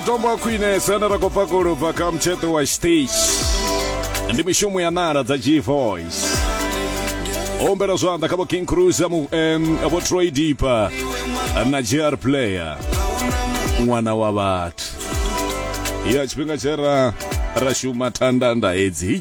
matombo a khwinesa ane ra khou bva kolobva kha mutsheṱo wa stage ndi mishumo ya nala dza g voice o humbela zwanḓa kha vho king cruiser mu- em, vho troy deeper na gr player ṅwana wa vhathu ya tshifhinga tshe ra ra shuma thandanda hedzi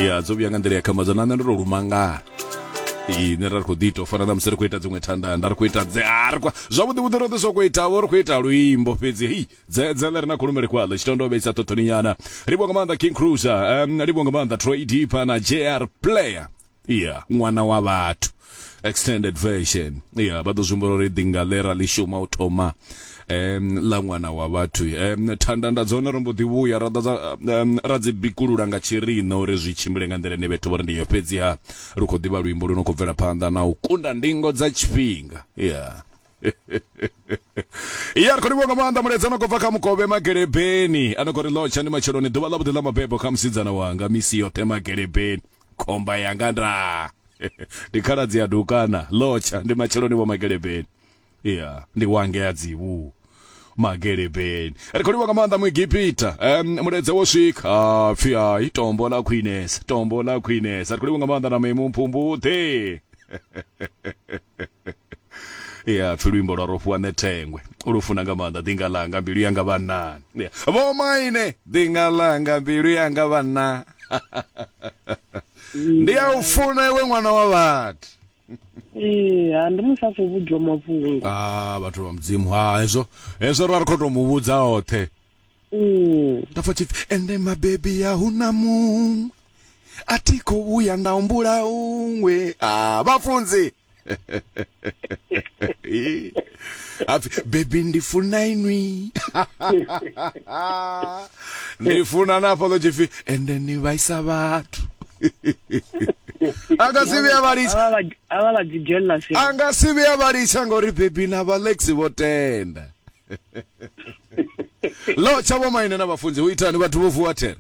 ya dzo vhuya nga nḓila ya khambadzo na nṋe ndo to lumangala ine ra ri khou ḓi ita u fana na musi ri khou ita dziṅwe thanda nda ri khou ita dzearkwa zwavhuḓi vhuḓi roṱhe soko itavho ri khou ita luimbo fhedzi hei dzedzele ri na khulumele kwaḽo tshitondo vheisa ṱoṱoni nyana livho nga maanḓa king cruiser um, livho nga maanḓa troy deeper na jr player iya ṅwana wa vhathu extended version iya vha ḓo zwi humbula uri ḓinga ḽe ra ḽi shuma u thoma um ḽa ṅwana wa vhathu um thanda nda dzone ro mbo ḓi vhuya ra ḓadza um, ra dzi bikulula nga tshirina uri zwi tshimbile nga nḓila ine vhethu vho ri ndi yo fhedziha lu khou ḓivha luimbo lu no khou bvela phanḓa na u kunda ndingo dza tshifhinga ya ya ri khou livhuwa nga maanḓa mulaedza no khou bva kha mukovhe magelebeni a no khou ri lotsha ndi matsheloni ḓuvha ḽa vhuḓi ḽa mabebo kha musidzana wanga misi yoṱhe magelebeni khomba yanga nda ndi khaladzi ya dukana lotsha ndi matsheloni vho magelebeni ya ndi wa ngea dzivhu magelebeni ri khou livha nga maanḓa muegipita um, muledze wo swika ha pfhi hai tombo ḽa khwinesa tombo ḽa khwinesa ri khou livha nga maanḓa na memu mphumbuḓe ya pfi luimbo lwa rofhiwa nṋe thengwe lu funa nga maanḓa ḓinga ḽanga mbilu yanga vhannani Ya, vho maine ḓinga ḽanga mbilu yanga vhanna ndi a u funa iwe ṅwana wa vhathu ee ha ndi musi a khou vhudzwa mafhungo ah vhathu vha mudzimu ha hezwo hezwo ra ri khou tou mu vhudza oṱhe Mm. nda pfa tshipfi ende mabebi ya hu na muṅwe a thi khou vhuya nda humbula uṅwe ah vhafunzi hapfi bebi ndi funa inwi ni funa na fhaḽo tshipfi ende ni vhaisa vhathu a nga si vhuya vha litsha avha vha dzi jealous a nga si vhuya vha litsha ngori bebi na valex vho tenda lo tsha vho maine na vhafunzi hu itani vhathu vho vuwa there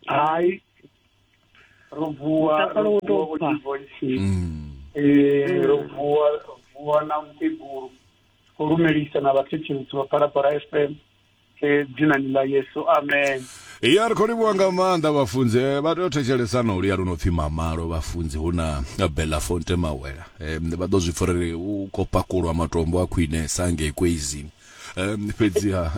hai ro vuwa mutakalo wo tou bva mm. eh, ro vuwa vuwa na mukegulu khou lumelisa na vhathetshelisi vha phalaphala f m eh, dzinani ḽa yesu amen ya ri khou livhuwa nga maanḓa vhafunzi eh, vha tea u thetshelesa na u liya lu no pfhi mamalo vhafunzi hu na belafonte mawela vha ḓo zwi pfa uri u khou pakulwa matombo a khwinesa ngei kweizini um fhedziha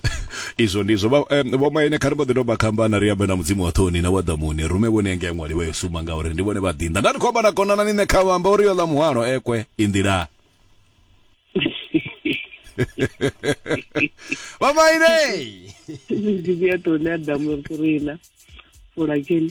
izwo ndizwo vhomaine kha ri mbo ḓi tou makhambana ri ambe na mudzimu wa ṱhoni na wa ḓamuni rume vhone engea ṅwali vha yo suma ngauri ndi vhone vha ḓinḓa nda ri khou amba na konana ni nṋe kha vhamba uri yo ḽa muhwalo ekwe i nḓila vhomaine mudzimu ya ṱhoni a ḓamu rina fulakeni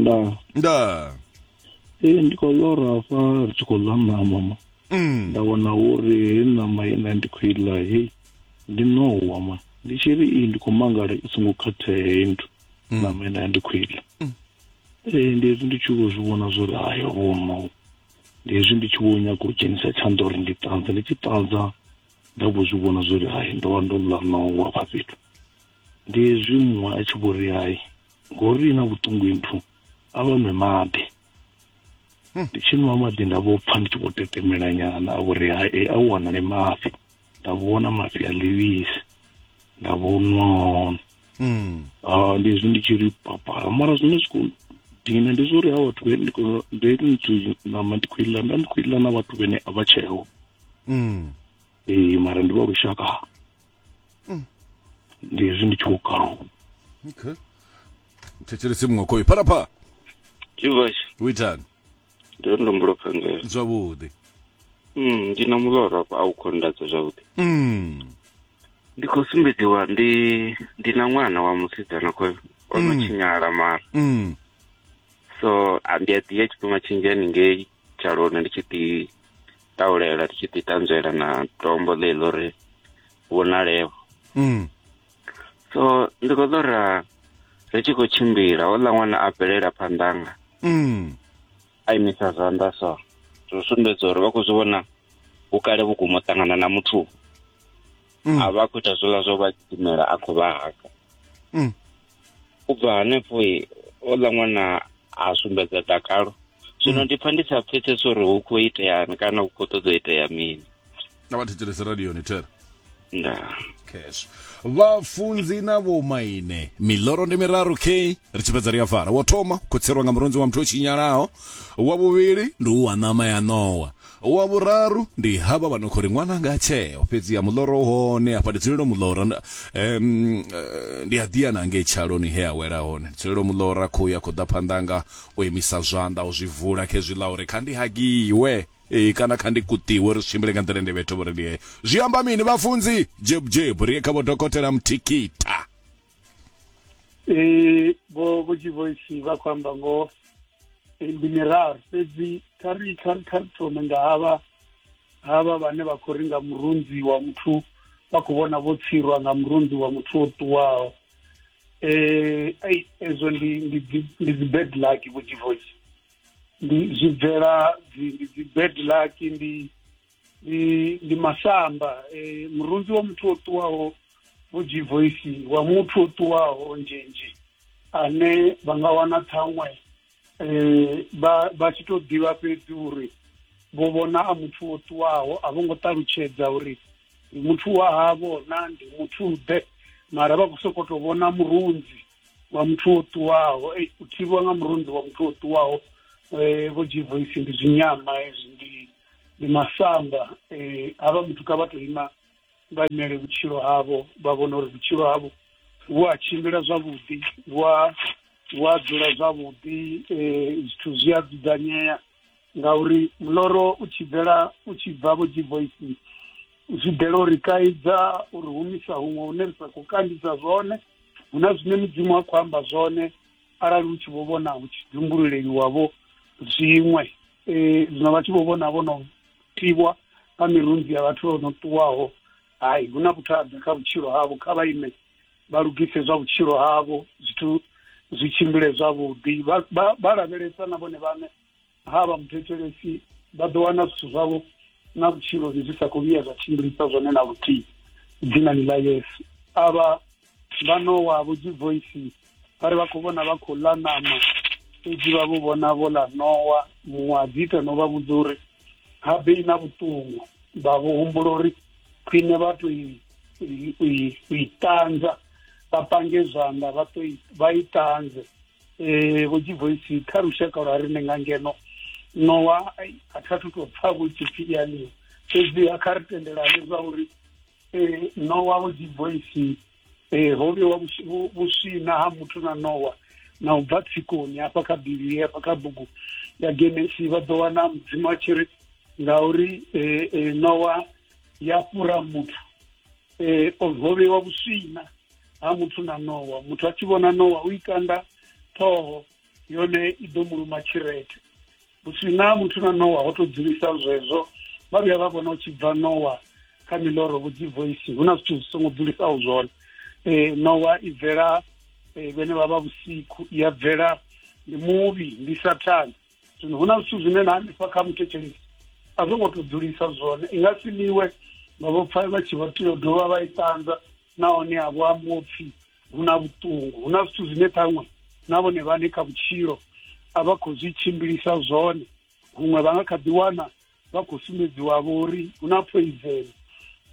nda nda e ndi khou lora hafha ri tshi khou ḽa ṋama ma mm. nda wana uri he ṋama ine ndi khou iḽa hei ndi ṋowa ma ndi tshi ri i ndi khou mangala i songo khathea heyi nthu mm. ṋama ine ndi khou iḽa mm. e ndi hezwi ndi tshi vho zwi vhona zwo ri ayo vho ṋowa ndi hezwi ndi tshi vho nyaga u dzhenisa tshanḓa uri ndi ṱanza ndi tshi ṱanza nda vho zwi vhona zwo ri hai ndo vha ndo ḽa ṋowa vha fhethu Ndi hezwi muṅwe a tshi vho ri hai ngori na vhuṱungu nthu a vha nwe maḓi hmm. ndi tshi nwa maḓi nda vho pfha ndi tshi vho tetemela nyana a vho ri hai eh, a u wanale mafhi nda vhona mafhi a ḽivhisi nda vho nwa hone hmm. ah, ndi hezwi ndi tshi ri papala mara zwine zwi khou dina ndi zwa uri ha vhathu vhene ndi nthu nama ndi khou iḽa nda ndi khou iḽa na vhathu vhene a vha tsheo hmm. ee mara ndi vha lushaka mm. ndi hezwi ndi tshi khou kaluwa okay thetshelese muṅwe khoyo phalapha jivas u itani ndi uri ndo mbulo phangela zwavhuḓi mm, ndi na muloro afho a u khou ndatsa zwavhuḓi mm. ndi khou sumbedziwa ndi ndi na ṅwana wa musidzana khoyo o no tshinyala mara Mm. so a- ndi a ḓi ya tshifhinga tshinzhi haningei tshalona ndi tshi ḓi ṱaulela ri tshi ḓi tanzwela na tombo ḽe ḽo ri vhonaleho mm. so ndi khou ḓo ra ri tshi khou tshimbila houḽa ṅwana a bvelela phanḓanga mm. a imisa zwanḓa so zwo sumbedza uri vha khou zwi vhona vhukale vhukuma u ṱangana na muthu mm. a vha khou ita zwola zwo vha gidimela a khou vha haka mm. u bva hanefho o ḽa ṅwana a sumbedza dakalo zwino mm. ndi pfa ndi sa pfesesa uri hu khou iteani kana hu khou ṱoḓa itea mini na vha thetshelese radioni thera nda cash vhafunzi na vhomaine miloro ndi miraru k ri tshi fhedza ri a fara wo thoma khotserwa nga murunzi wa muthu o tshinyalaho wa vhuvhili ndi u wa ṋama ya ṋowa Wa vhuraru ndi havha vha no khou ri ṅwananga tsheo, fhedziha muḽoro u hone hafha, ndi dzulelo muḽora, um, ndi a ḓiya na hangei tshaloni he a wela hone, ndi dzulelo muḽora, khuhu ya khou ḓa phanḓa hanga, o imisa zwanḓa, o zwi vula, khezwi ḽa uri kha ndi hagiwe, e, kana kha ndi kuṱiwe, ri tshimbile nga nḓila ende vhethe vho ri ndi he. Zwi amba mini, vhafunzi? Dzhebudzebu, ri ye kha vho dokotela Mthikita. e vho vho tshivoisi vha khou amba ngoho ndi miraru fhedzi kha ri kha ri kha ri thome nga havha havha vhane vha khou ri nga murunzi wa muthu vha khou vhona vho tsirwa nga murunzi wa muthu o ṱuwaho eh ai ezwo ndi ndi ndi dzi bad luck vho tshivoisi ndi zwi bvela dzi ndi dzi bad luck ndi ndi ndi masamba e, murunzi wa muthu o ṱuwaho vho jivoisi wa muthu o ṱuwaho nzhinzhi ane vha nga wana ṱhaṅwe um vha vha tshi tou ḓivha fhedzi uri vho vhona a muthu o ṱuwaho a vho ngo ṱalutshedza uri ndi muthu wa havho na ndi muthu ḓe mara vha khou sokou tou vhona murunzi wa muthu o ṱuwaho ei u thivhiwa nga murunzi wa muthu o ṱuwaho um vho jivoisi ndi zwinyama hezwi ndi ndi masamba eh, havha muthu kha vha to ima vha imele vhutshilo havho vha vhona uri vhutshilo havho vhu a tshimbila zwavhuḓi vhu a vhu a dzula zwavhuḓi eh, zwithu zwi a dzudzanyea ngauri muloro u tshi bvela u tshi bva vho dzivoisi zwi bvela uri kaidza uri humisa huṅwe hune ri sa khou kandisa zwone hu na zwine mudzimu a khou amba zwone arali hu tshi vho vhona hu tshi dzumbululeliwavho zwiṅwe eh, zwino vha tshi vho vhona vho no tivwa nga mirunzi ya vhathu vho no ṱuwaho hai hu na vhuthada kha vhutshilo havho kha vha ime vha lugise zwa vhutshilo havho zwithu zwi tshimbile zwavhuḓi vha- vha vha lavhelesa na vhone vhaṋe Ha vha muthetshelesi vha ḓo wana zwithu zwavho na vhutshiloni zwi sa khou vhuya zwa tshimbilisa zwone na luthihi dzinani ḽa yesu a vha vha nowa vho dzivoisi vha ri vha khou vhona vha khou ḽa ṋama fhedzi vha vho vhona vho ḽa nowa muṅwe a dzi ita no vha vhudza uri ha bei na vhuṱungu vha vho humbula uri khwine vha to i ṱanza vha pange zwanḓa vha to vha i ṱanze eh vho dzivoisi kha lushaka lwa rine nga ngeno nowa a tha thu tou pfa vho tshipfi ianiwa fhedziha kha ri tendelane zwa uri eh nowa vho dzivoisi eh ho vhewa vhuswina ha muthu na nowa na u bva tsikoni hafha kha bivhili hafha kha bugu ya genesi vha ḓo wana mudzimu a tshi ri ngauri eh, eh nowa ya fhura muthu e, o vhovhewa vhuswina ha muthu na nowa muthu a tshi vhona nowa u ikanda ṱhoho yone i ḓo muluma tshirete vhuswina ha muthu na nowa ho to dzulisa zwezwo vha vhuya vha vhona u tshi bva nowa kha miloro vhudzi voice hu na zwithu zwi songo dzulisaho zwone um nowa i bvela um vhene vha vha vhusiku i ya bvela ndi muvhi ndi sathane zwino hu na zwithu zwine na hanefha kha muthetshelesi a zwo ngo to dzulisa zwone i nga si liwe vha vho pfa vha tshi vho tea u dovha vha i ṱanza nahone a vho ambo pfhi hu na vhuṱungu hu na zwithu zwine ṱhaṅwe na vhone vhane kha vhutshilo a vha khou zwi tshimbilisa zwone huṅwe vha nga kha ḓi wana vha khou sumbedziwa vho uri hu na poison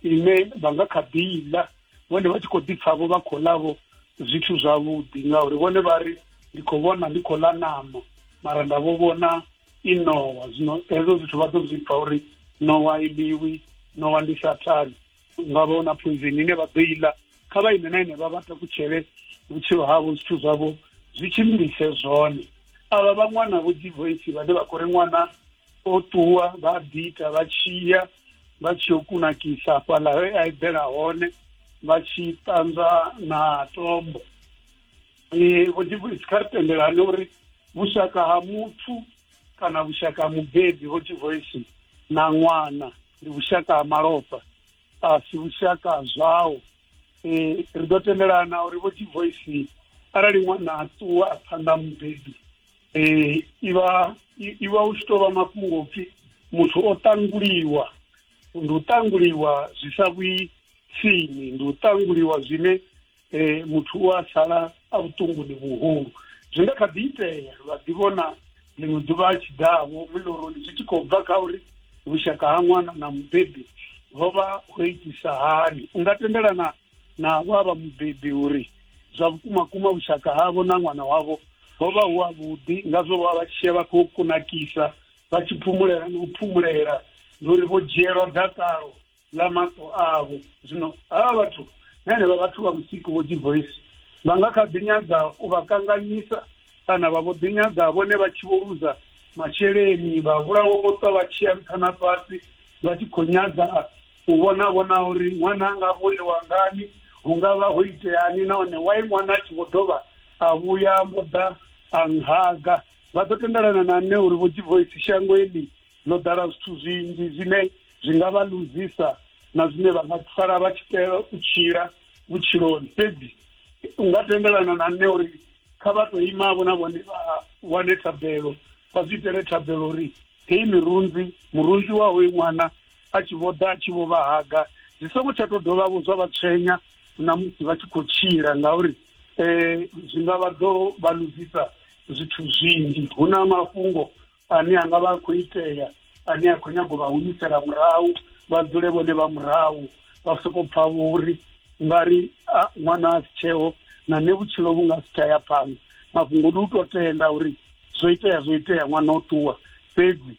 ine vha nga kha ḓi ḽa vhone vha tshi khou ḓi pfavho vha khou ḽavho zwithu zwavhuḓi ngauri vhone vha ri ndi khou vhona ndi khou ḽa ṋama mara nda vho vhona i nowa zwino hezwo zwithu vha ḓo zwi pfa uri nowa i ḽiwi nowa ndi sathane nga vha na phunzini ine vha ḓo i ḽa kha vha ime na ine vha vha takutshele vhutshilo havho zwithu zwavho zwi tshimbilise zwone avha vha ṅwana vho dzi voice vhane vha khou ri ṅwana o ṱuwa vha ḓi ita vha tshiya vha tshi yo kunakisa fhaḽa he a eḓela hone vha tshi ṱanzwa na tombo um vho dzi voice kha ri tendelane uri vhushaka ha muthu kana vhushaka ha mubebi vho dzi voice na ṅwana ndi vhushaka ha malofha a si vhushaka ha zwao um ri ḓo tendelana uri vho divoisi arali ṅwana a ṱuwa a phanḓa mubebi um ivha ivha u tshi tou vha mafhungo upfhi muthu o ṱanguliwa ndi u ṱanguliwa zwi sa vhuyi tsini ndi u ṱanguliwa zwine um muthu u a sala a vhuṱunguni vhuhulu zwi nga kha ḓi itea vha ḓi vhona ḽiṅwe ḓuvha a tshi ḓavho miloroni zwi tshi khou bva kha uri vhushaka ha ṅwana na mubebi ho vha ho itisa hani u nga tendelana na vho a vha mubebi uri zwa vhukuma kuma vhushaka havho na ṅwana wavho ho vha hu avhuḓi ngazwo vha vha tshia vha khou kunakisa vha tshi phumulela na u phumulela ndi uri vho dzhielwa dakalo ḽa maṱo avho. Zwino havha vhathu na henevha vhathu vha vhusiku vho dzivoisi vha nga kha ḓi nyaga u vha kanganyisa kana vha vho ḓi nyaga vhone vha tshi vho luza masheleni vha vhulawa vho ṱwa vha tshiya nṱha na fhasi vha tshi khou nyaga u vhona vhona uri ṅwana a nga vholiwa ngani hu nga vha ho iteani nahone wai ṅwana a tshi vho dovha a vhuya mbo ḓa a nhaga vha ḓo tendelana na nṋe uri vho dzivoisi shango eḽi ḽo ḓala zwithu zwinzhi zwine zwi nga vha luzisa na zwine vha nga sala vha tshi tea u tshila vhutshiloni fhedzi u nga tendelana na nṋe uri kha vha tou imavho na vhone vha wane thabelo vha zwi itele thabelo uri heyi mirunzi murunzi wa hoyu ṅwana a tshi vho ḓa a tshi vho vha haga zwi songo tsha tou dovha vho zwa vha tshwenya na musi vha tshi khou tshila ngauri um zwi nga vha ḓo vha luzisa zwithu zwinzhi hu na mafhungo ane a nga vha a khou itea ane a khou nyaga u vha humisela murahu vha dzule vhone vha murahu vha soko pfa vho uri nga ri ṅwana a si tsheo na nṋe vhutshilo vhu nga si tsha ya phanḓa mafhungo ndi u to tenda uri zwo itea zwo itea ṅwana o ṱuwa fhedzi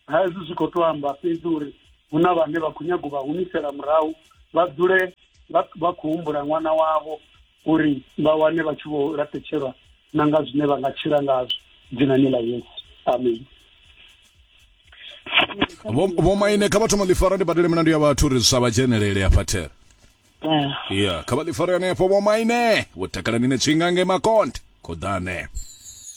ha hezwi zwi khou to amba fhedzi uri hu na vhane vha khou nyaga u vha humisela murahu vha dzule vha khou humbula ṅwana wavho uri vha wane vha tshi vho laṱetshelwa na nga zwine vha nga tshila ngazwo dzinani ḽa yesu amen vho maine kha vha thoma ḽifara ndi badele milandu ya vhathu uri zwisavha dzhenelele ya fathera ya kha vha ḽifara yone yafho vho maine vho takalani ne tshinga nge makonde Khoḓane.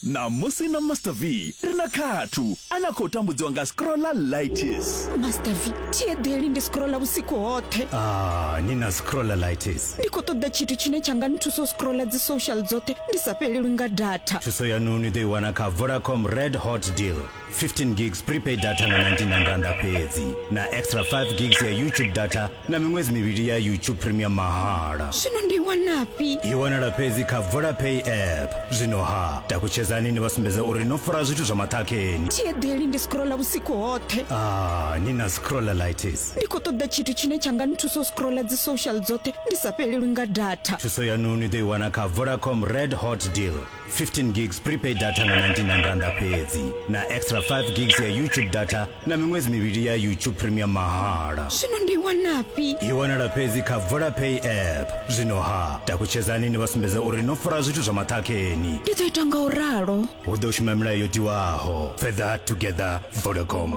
Ṋamusi na Master V ri na Khathu a na khou tambudziwa nga scrollalitis. Master V, thi eḓeli ndi scrolla vhusiku hoṱhe. Ah, ni na scrollalitis. Ndi khou ṱoḓa tshithu tshine tsha nga nthusa u scrolla dzi social dzoṱhe ndi sa fhelelwi nga data. Thuso yanu ni ḓo i wana kha Vodacom Red Hot Deal. 15 gigs prepaid data nga 99 randa fhedzi na extra 5 gigs ya youtube data na miṅwedzi mivhili ya youtube premium mahala zwino ndi wanafhi i wanala fhedzi kha vodapay app zwino ha takutshedzani ni vha sumbedza uri no fara zwithu zwa maṱhakheni thiedeli ndi scrolla vhusiku hoṱhe ah, ni na scrollalitis ndi khou ṱoḓa tshithu tshine tsha nga nthusa u scrolla dzi social dzoṱhe ndi sa fhelelwi nga data thuso yanu ni ḓo i wana kha vodacom red hot deal 15 gigs prepaid data nga 99 randa fhedzi na extra 5 gigs ya youtube data na miṅwedzi mivhili ya youtube premium mahala zwino ndi wanafhi i wanala fhedzi kha vodapay app zwino ha takutshedzani ni vha sumbedza uri no fara zwithu zwa maṱhakheni ndi ḓo ita nga u ralo hu ḓo shuma milayo yo tiwaho further together vodacom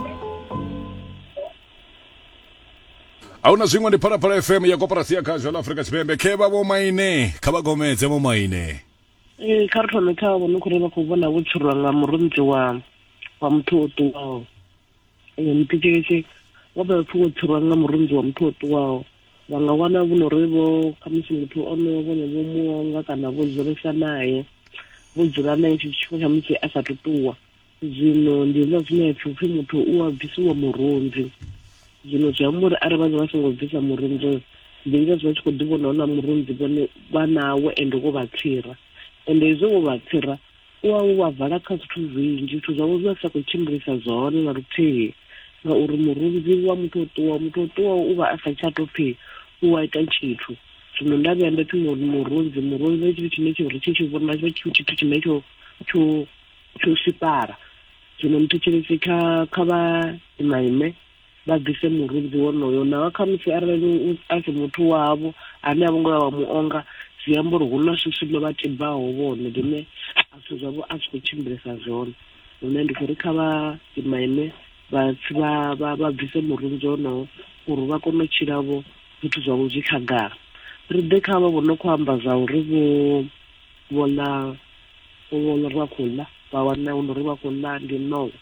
ahuna zwiṅwe ndi phalaphala fm ya koporasi ya khazho la afrika tshipembe khe vha vho maine kha vha gomedze vho maine ee kha ri thome kha vhone khou ri vha khou vhona vho tshurwa nga murunzi wa wa muthu o ṱuwaho ee muthetshelesi wa vha pfhi wo tshurwa nga murunzi wa muthu o ṱuwaho vha nga wana vho no ri vho khamusi muthu ono vhone vho muonga kana vho dzulesa naye vho dzula naye tshithu tshifhinga tsha musi a sa ṱuwa zwino ndi hezwiḽa zwine ya pfi upfi muthu u a bvisiwa murunzi zwino zwi amba uri arali vhaza vha songo bvisa murunzi oyo ndi ngazwo vha tshi khou ḓi vhona hona murunzi vhone vha nawo ende wo vha tsira ende hezwo wo vha tsira u wa wo vha vala kha zwithu zwinzhi zwithu zwavho zwi vha sa khou tshimbilisa zwone na luthihi ngauri murunzi wa muthu o ṱuwa muthu o ṱuwa u vha a sa tsha to pfhi u wa ita tshithu zwino nda vhuya nda pfhi murunzi murunzi tshithu tshine tsho ri tshi tshi vhona tshithu tshine tsho tsho Lusifara. Zwino muthetshelesi kha kha vha imaime vha ḓise murunzi wonoyo, naho khamusi arali u a si muthu wavho ane a vho ngo vha vha mu onga, zwi amba uri hu na swiswi ḽo vha tibaho vhone ḽine a zwithu zwavho a zwi khou tshimbilesa zwone. Hune ndi khou ri kha vha imaime vha vha vha vha bvise murunzi wonowo uri vha kone u tshila vho zwithu zwavho zwi khagala. Ri ḓe kha avho vho no khou amba zwa uri vho Vho ḽa, vho vha uri vha khou ḽa, vha wana hu no uri vha khou ḽa ndi ṋowa.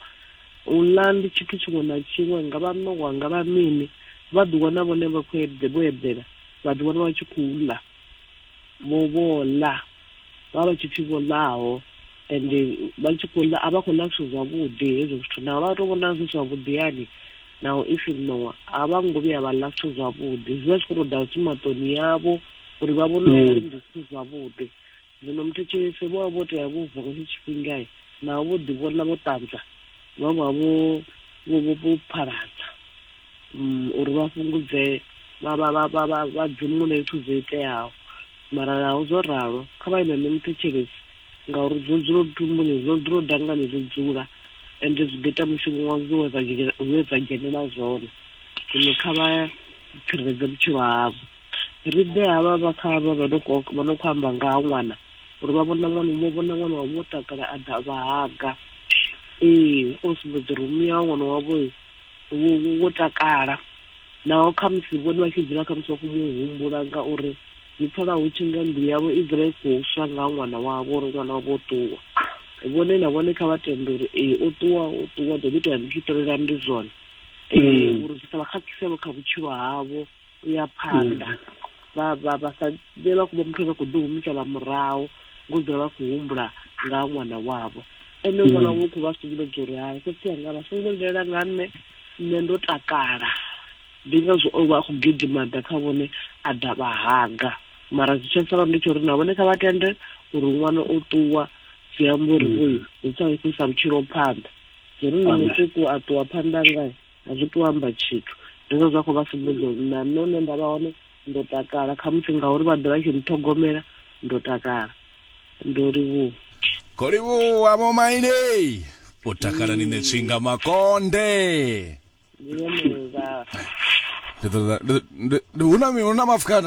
U ḽa ndi tshithu tshiṅwe na tshiṅwe, nga vha ṋowa, nga vha mini, vha ḓi wana vhone vha khou eḓe, vho eḓela, vha ḓi wana vha tshi khou ḽa. Vho, vho ḽa, vha vha tshi pfi vho ḽaho, ende vha tshi khou ḽa, a vha khou ḽa zwithu zwavhuḓi hezwo zwithu, naho vha tou vhona zwi zwavhuḓi hani, naho i si ṋowa, a vha ngo vhuya vha ḽa zwithu zwavhuḓi, zwi vha zwi khou tou ḓa zwi maṱoni avho. uri vha vhone mm. ungari ndi si zwavhuḓi zwino muthetshelese vho vha vho tea vho vuka nga tshifhingai naho vho ḓivhona vho ṱanza vha vha vho vho phaladza mm, uri vha fhungudze vha dzimule zwithu zwo iteaho mara naho zwo ralo kha vha ime ne muthetshelesi ngauri zwo dzula lutumbuni zwo dzula dangani zwo dzula ende zwi ḓo ita mushumo wa zwo we dza dzhenela zwone zwino kha vha tsireledze vhutshilo havho Ri ḓe havha vha kha havha vha no khou vha no khou amba nga ha ṅwana uri vha vhona ṅwana vho vhona ṅwana wavho wo takala a ḓa a vha haga. Ee o sumbedza uri muya wa ṅwana wavho wo wo wo takala naho khamusi vhone vha tshi dzula khamusi vha khou mu humbula ngauri zwi pfala hu tshi nga mbilu yavho i dzula i khou swa nga ha ṅwana wavho uri ṅwana wavho o ṱuwa. Vhone na vhone kha vha tende uri ee o ṱuwa o ṱuwa ḓo ḓi tou ya ndi tshi ṱolela ndi zwone uri zwi sa vha khakhisevho kha vhutshilo havho. u ya phanḓa vha vha vha sa vhe vha kuba muthu ane khou ḓi humisela murahu ngo dzula vha khou humbula nga ha ṅwana wavho ene mm. ṅwana wavho khou vha sumbedza uri hai khotsi anga vha songo lilela nga nṋe nṋe ndo takala ndi ngazwo o vha a khou gidima ḓa kha vhone a ḓa vha haga mara zwi tsha sala ndi tsho uri na vhone kha vha tende uri ṅwana o ṱuwa zwi amba uri mm. oyu zwi tsha isa vhutshilo phanḓa zwi ri nṋe muṱuku a ṱuwa phanḓa ngae A zwi tu amba tshithu. Hezwo zwa khou vha sumbedza uri na nṋe hune nda vha hone ndo takala, khamusi ngauri vha ḓe vha tshi nṱhogomela, ndo takala. Ndo livhuwa. Kho livhuwa Vho Maine. U takala ni ṋe tswinga makonde. Ndi vhone vha. Ndi ṱoḓa, ndi, ndi, ndi, hu na mi, hu na mafukana.